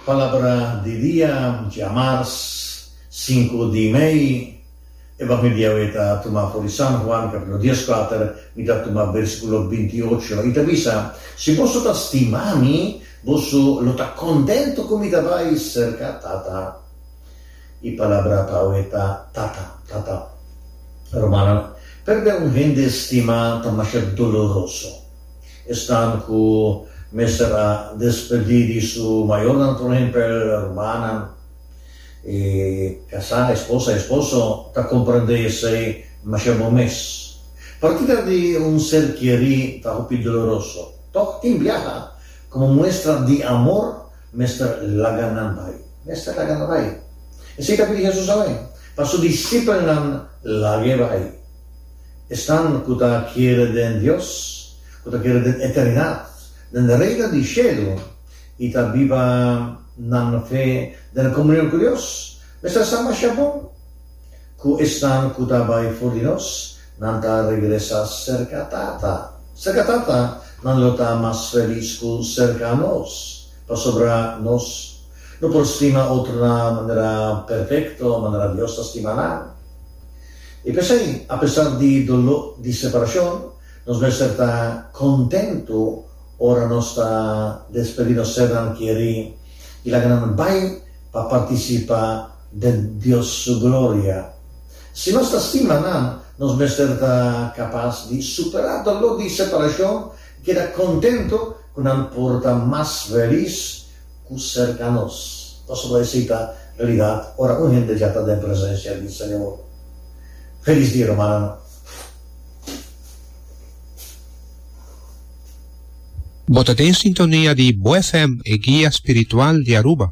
Palabra di dia, Djamars sinku di mei, e papia di Yahweh ta tuma for di San Juan capitulo dies kuater, mi ta tuma versiculo binti i ocho, i ta bisa, Si boso ta stima mi, boso lo ta contento cu mi ta bai cerca Tata. E palabra pa awe ta Tata, Tata. Romana, perde un hende stima ta masha doloroso. Esnan cu mester a despedí di su mayornan, por ehempel rumannan, e casá, esposa, esposo, ta comprendé esei masha bon mes. Partida di un ser kerí ta hopi doloroso. Tok tin biaha, como muestra di amor, mester laga nan bai. Mester laga nan bai. Esei ta pidi Jesús awe pa su disipelnan lag'e bai. Esnan ku ta kere den Dios, ku ta kere den eternidat, den Reino di shelu i ta biba nan fe den komunion ku Dios, mester masha bon ku esnan ku ta bai for di nos. Nan ta regresa serka Tata. Serka Tata, nan lo ta mas felis ku serka nos, pasobra nos no por stima otronan manera perfekto, manera Dios ta stima nan. I p'esei, apesar di doló di separashon, nos mester ta kontentu ora nos ta despedí nos sernan kerí i laga nan bai pa partisipá den Dios su gloria. Si nos ta stima nan, nos mester ta kapas di superá doló di separashon i keda kontentu ku nan por ta mas felis ku serka nos. Pasobra esei ta realidat ora un hende dja ta den presensia di Señor. Felis dia, hermananan. Bo ta den sintonia di Bo FM, e guia spiritual di Aruba.